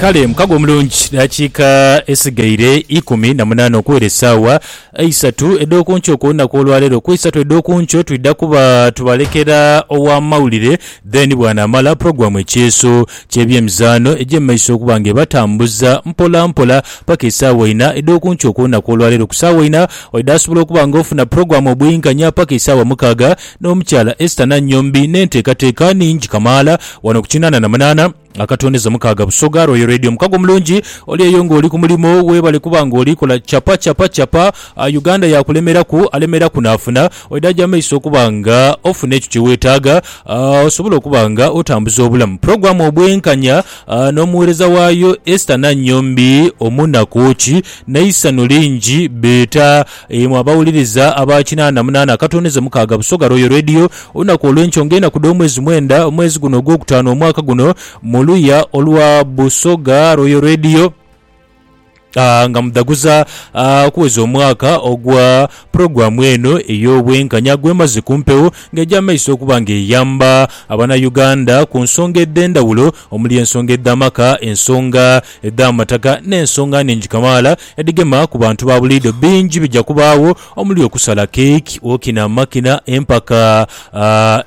Kale mukago omulungi dakiika esigaire ikumi na munaana okuwera esaawa eisatu edh'oku nkyo ku lunaku olwaleero ku isatu edh'oku nkyo twidha kuba tubalekera ow'amawulire then bwanaamala pulogulaamu ekyeeso ky'ebyemizaano egye mu maiso okuba nga ebatambuza mpola mpola paka esaawa ina edh'oku nkyo ku lunaku olwaleero ku saawa ina oidha asobola okuba nga ofuna pulogulaamu obwinkanya paka esaawa mukaaga N'omukyala Esther Nannyombi n'enteekateeka nhingi kamaala wano ku kinaana na munaana akatondeza Mukaaga Busoga Royal Radio. Mukago mulungi oli eyo ng'oli ku mulimo, weebale kuba ng'oli kola chapa chapa chapa. Uganda yaakulemeraku, alemeraku naafuna. Oidaaja amaiso okuba nga ofuna ekyo kye weetaaga osobole okuba nga otambuza obulamu. Pulogulaamu Obwenkanya n'omuweereza waayo Esther Nannyombi, Omunaku ki n'eisanhu lingi beeta. Imwe abawuliriza aba kinaana munaana akatondeze mukaaga Busoga Royal Radio, olunaku olwenkyo nga enaku dhomwezi mwenda omwezi guno ogwokutaano omwaka guno muluya olwa Busoga Royal Radio nga mudhaguza kuweza omwaka ogwa pulogulamu eno eyobwenkanya gwemaze kumpewo nga egya maiso okuba nga eyamba abana Uganda kunsonga edhendawulo omuli ensonga edh'amaka, ensonga edh'amataka n'ensonga nhingi kamaala edhigema ku bantu ba buliidho. Bingi bija kubaagho omuli okusala keiki, okina amakina, empaka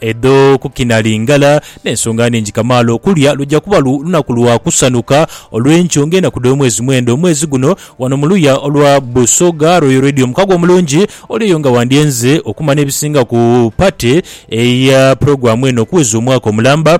edh'okukina lingala n'ensonga nhingi kamaala. Okulya luja kuba lunaku lwa kusanhuka olw'enkyo ng'enaku dh'omwezi mwenda omwezi guno wano mu luya olwa Busoga Royal Radio. Mukago omulungi oli eyo nga wandyenze okumanha ebisinga ku pate eya pulogulaamu eno okuweza omwaka omulamba.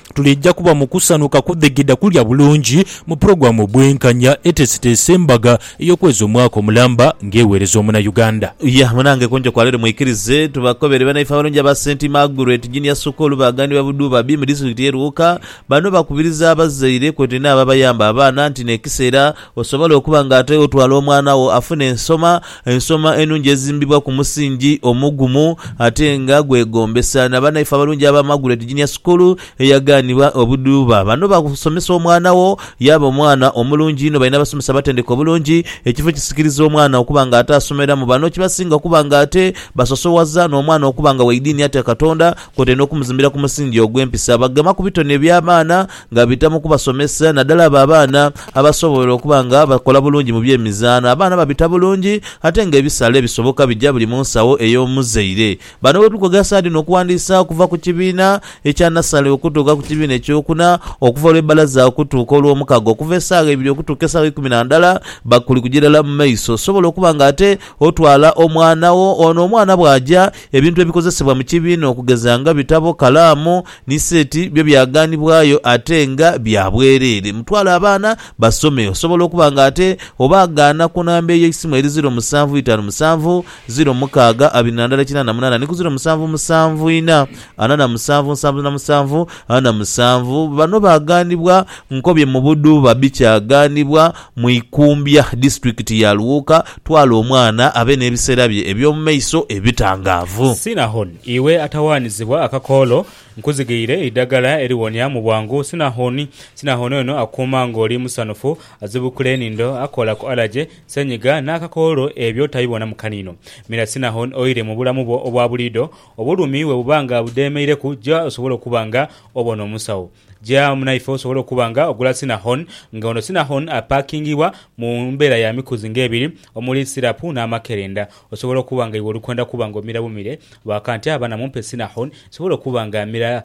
Tuliija kuba mu kusanhuka kudhigidha kulya bulungi mu pulogulaamu Obwenkanya eteeseteese embaga ey'okweza omwaka omulamba ng'egheereza Omunayuganda. Yah, munange kunjo kwa leero mwikirize tubakobere banaife abalungi aba St Margaret Junior School baghanibwa Budhubabi mu disitulikiti ye Luuka. Bano bakubiriza abazaire kwotaire n'abo abayamba abaana nti n'ekiseera. Osobole okuba nga ate otwala omwana wo afune ensoma, ensoma enungi ezimbibwa ku musingi omugumu ate nga gwegombesa. Na banaife abalungi aba Margaret Junior School eyaganibwa obudhuuba. Bano basomesa omwana wo yaaba omwana omulungi inho. Balina abasomesa abatendeke obulungi, ekifo ekisikiriza omwana okuba nga ate asomeramu. Bano kibasinga okuba nga ate basosowaza n'omwana okuba nga wa idiini atya Katonda, kwotaire n'okumuzimbira ku musingi ogw'empisa. Bagema ku bitone eby'abaana. Nga bita mu kubasomesa, naddala abo abaana abasobola okuba nga bakola bulungi mu by'emizaano, abaana babita bulungi ate nga ebisale ebisoboka bija buli mu nsawo ey'omuzaire. Bano ghe tuli kwogera saadi dhino okuwandiisa okuva ku kibiina ekya nasale okutuuka ku kibiina ekyokuna, okuva olw'ebbalaza okutuuka olw'omukaga, okuva esaawa ibiri okutuuka esaawa ikumi na ndala bakuli kuja irala mu maiso. Osobola okuba nga ate otwala omwana wo. Ono omwana bw'aja, ebintu ebikozesebwa mu kibiina okugeza nga bitabo, kalaamu, Ni seti byo byagaanibwayo ate nga bya bwereere. Mutwale abaana basome. Osobola okuba nga ate obaagaana ku namba eyo eisimu eri ziro musanvu itaanu musanvu, ziro mukaaga abiri na ndala kinaana munaana ni ku ziro musanvu musanvu ina ana na musanvu nsanvu na musanvu ana musanvu. Bano baagaanibwa Nkobye mu Buduuba bi kyagaanibwa mu Ikumbya, disitulikiti ya Luwuuka. Twala omwana abe n'ebiseera bye eby'omu maiso ebitangaavu. Sina Hon. Iwe atawaanizibwa akakoolo, nkuzighiire eidagala eriwonia mu bwangu sinahoni. Sinahoni ono akukuuma ng'oli musanhufu, azibukula enhindo, akola ku alaje, senyiga, n'akakoolo ebyo tabibonamu kaniino. Mira sinahoni oire mu bulamu bwo obwa buliidho. Obulumi bwe buba nga budheemeireku, ja osobole okuba nga obona omusawo. Ja munaife osobole okuba nga ogula sinahoni, nga ono sinahoni apaakingibwa mu mbeera ya mikuzi ng'ebiri omuli sirapu n'amakerenda. Osobola okuba nga iwe oli kwenda kuba nga omira bumire baka nti, Abana mumpe Sinahon. Nsobola okuba nga mmira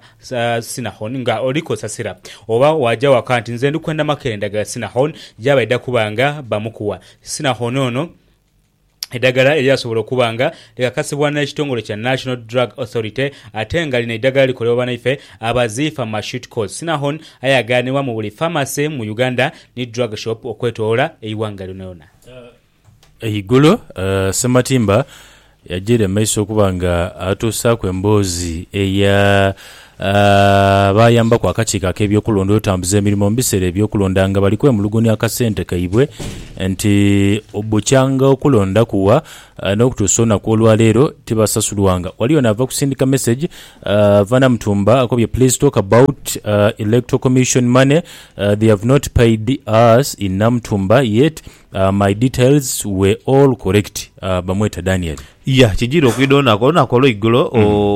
Sinahon nga oli kosasira. Oba waaja waka nti, Nze ndi kwenda makere ndhagala Sinahon gy'aba aidha kuba nga bamukuwa. Sinahon ono eidhagala eryasobola okuba nga likakasibwa n'ekitongole kya National Drug Authority ate nga lino eidhagala likolebwa banaife aba Zee Pharmaceuticals. Sinahon aye aghanibwa mu buli pharmacy mu Uganda ni drug shop okwetolola eighanga lyonayona. Eigulu, Ssematimba yajiira mu maiso okuba nga atuusaaku emboozi eya abaayambaku akakiiko ak'ebyokulonda okutambuza emirimo mu biseera eby'okulonda nga bali kwemulugunya akasente kaibwe nti bukyanga okulonda kuwa n'okutuusa olunaku olwaleero tibasasulwanga. Waliyo n'ava kusindika mesegi ava Namutumba akobye Please talk about Electoral Commission money, they have not paid us in Namutumba yet My details were all correct bamweta Daniel. Yeah kijira okwidha olunaku olunaku olweigulo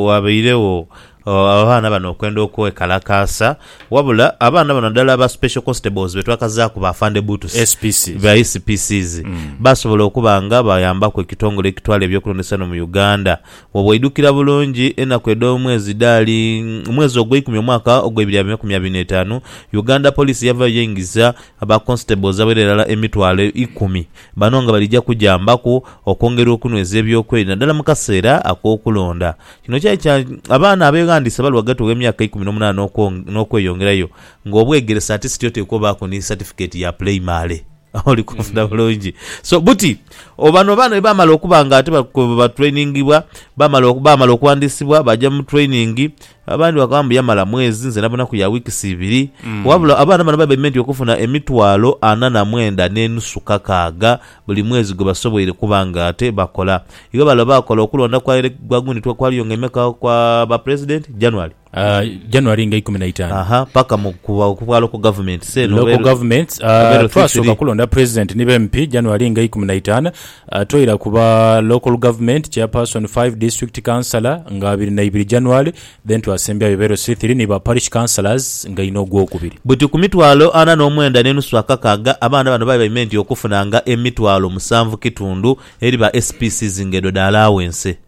wabairegho abaana bano okwenda okwekalakaasa wabula abaana bano nadala ba special constables betwakazaaku ba Afande Butus SPC. ba SPCs basobola okuba nga bayambaku ekitongole ekitwala ebyokulondesa eno mu Uganda wobweidhukira bulungi enaku edhomwezi dhaali mwezi ogweikumi omwaka ogweibiri abiri mu enkumi abiri n'etaanu Uganda Police yavaayo yaingiza Aba Constables abaira irala emitwalo eikumi bano nga balija kujambaku okwongera okunweza eby'okwerinda naddala mu kaseera ak'okulonda. Kino kyali kya abaana abeghandiisa bali ghagati gh'emyaka eikumi n'omunaana n'okweyongerayo nga obwegeresa ate siti oteekwa obaaku ni satifikeeti ya pulayimale. Oli kunfuna bulungi? So buti o bano baana bwe baamala okuba nga ate batreiningibwa, baamala baamala okuwandiisibwa, baaja mu training, Abandi bakoba mbu yamala mwezi nze nabona ku ya weeks ibiri wabula abaana bano babaire meant okufuna emitwalo ana na mwenda ne nusu kakaaga buli mwezi gwebasoboire kuba nga ate bakola iwe bale oba akola okulonda kwa ele gwa gundi twa kwaliyo nga emeka kwa ba president January Aah January nga ikumi na itaanu. aha paka mu ku ku bwa local government say no Local governments, aah, November three twasoka three. kulonda president ni ba MP January nga ikumi na itaanu Atwaire ku ba Local Government, Chairperson, Five District Councillor nga abiri na ibiri January, then twasembyayo Ibero Sithiri ni ba Parish Councillors nga inho ogwokubiri. Buti ku mitwalo ana n'omwenda n'enusu akakaaga, abaana bano babaime nti okufunanga emitwalo musanvu kitundu eri ba SPCs nga edho dha allowance.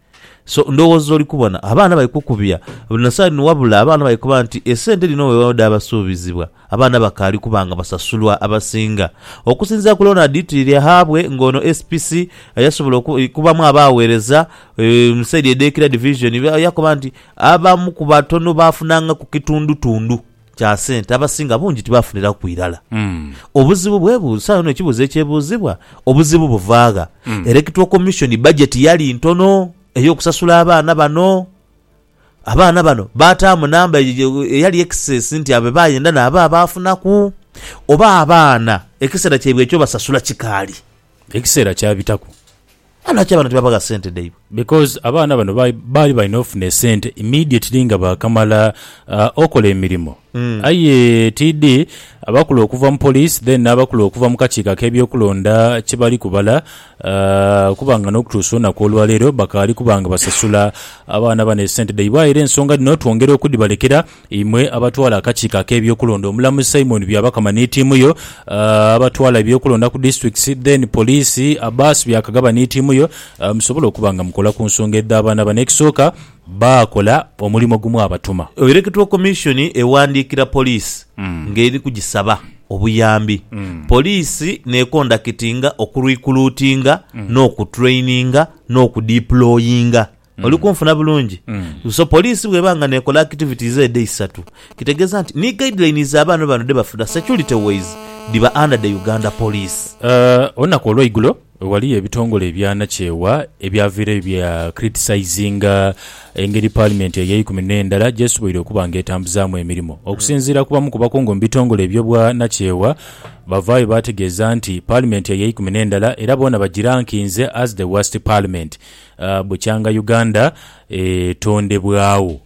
So ndhowooza oli kubona abaana bali kukubya buli na side ni wabula abaana bali kuba nti esente dhino wewaawo dhaabasuubizibwa. Abaana bakaali kuba nga basasulwa abasinga okusinzira ku Ronald Twiryahabwe ng'ono SPC yasobola okubamu abaaweereza mu saidi edh'e Kira Division yakoba nti abamu ku batono baafunanga ku kitundutundu kya sente abasinga bungi tibaafuniraku ku irala. Obuzibu bwebuuza, saagho yona ekibuuzo ekyebuuzibwa, obuzibu buvaagha? Erectoral Commission bajeti yali ntono ey'okusasula abaana bano. Abaana bano baataamu namba eyo eyali excess nti abo be baayenda naabo abaafunaku, oba abaana ekiseera kyaibwe eky'obasasula kikaali. Ekiseera kyabitaku. Aye lwaki abaana tibaabagha sente dhaibwe? Because abaana bano baali balina ofuna esente immediately nga baakamala okola emirimo. Aye tidhi abakulu okuva mu police then n'abakulu okuva mu kakiiko ak'ebyokulonda kye bali kubala kuba nga n'okutuusa olunaku olwaleero bakaali kuba nga basasula abaana bano esente dhaibwe aye era ensonga dhino twongera okudhibalekera imwe abatwala akakiiko ak'ebyokulonda Omulamuzi Simon Byabakama ni tiimu yo abatwala ebyokulonda ku districts then police Abbas Byakagaba ni tiimu yo musobole okuba nga mukola ku nsonga edh'abaana bano ekisooka baakola omulimo gumwabatuma. Electoral Commission ewandiikira poliisi ng'eri kugisaba obuyambi. Poliisi n'ekondakitinga okurikuluutinga n'okutraininga n'okudiployinga. Oli kunfuna bulungi? So poliisi bw'eba nga n'ekola activities edho eisatu, kitegeeza nti ni guidelines abaana bano dhe bafuna security wise dhiba under the Uganda Police. Olunaku olweigulo Ghaliyo ebitongole ebyanakyewa ebyaviireyo bya criticizinga engeri Paalimenti ey'eikumi n'endala gy'esoboire okuba nga etambuzaamu emirimo. Okusinziira ku bamu ku bakungu mu bitongole ebyo bwa nakyewa, bavaayo baategeeza nti Paalimenti ey'eikumi n'endala era boona bagirankinze as the worst Parliament bukya nga Uganda etondebwagho.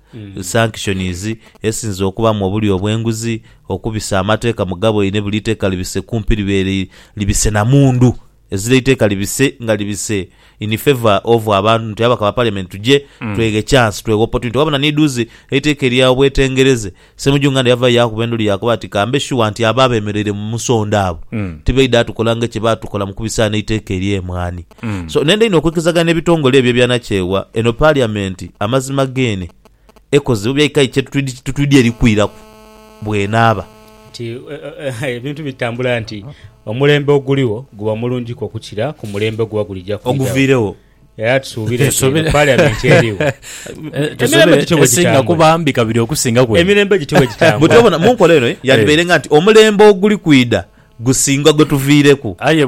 sanctions, esinze okubamu obulyo obwenguzi, okubisa amateka mu gaboine buli iteka libise kumpi libeere libise na mundu ezira iteka libise nga libise in favour of abantu nti ababaka ba parliament tuje tweghe chance tweghe opportunity wabona ni duuzi eiteka erya obwetengereze Ssemujju Nganda yavayo yakuba endulu yakoba ati kambe sure nti abo abemereire mu musonda abo tibaidha tukola nga ekye batukola mukubisa eno eiteka erye mwaani. So nenda inho okwikirizaghana n'ebitongole ebyo ebyanakyewa eno Paliamenti amazima geene ekoze oba byaikayo kye tutwidhi eri kwiraku bw'enaaba. Nti ebintu bitambula nti omulembe oguligho guba mulungiku okukira ku mulembe oguba gulija kwidhagho. Oguviiregho. Era tusuubire nti eno Paliamenti erigho emirembe gityo bwe Esinga gitambula. kuba mbi kabiri okusingaku eno. Emirembe gityo bwe gitambula. Buti obona, mu nkola eno yandibaire nga nti omulembe oguli kwidha gusinga gwe tuviireku. Aye.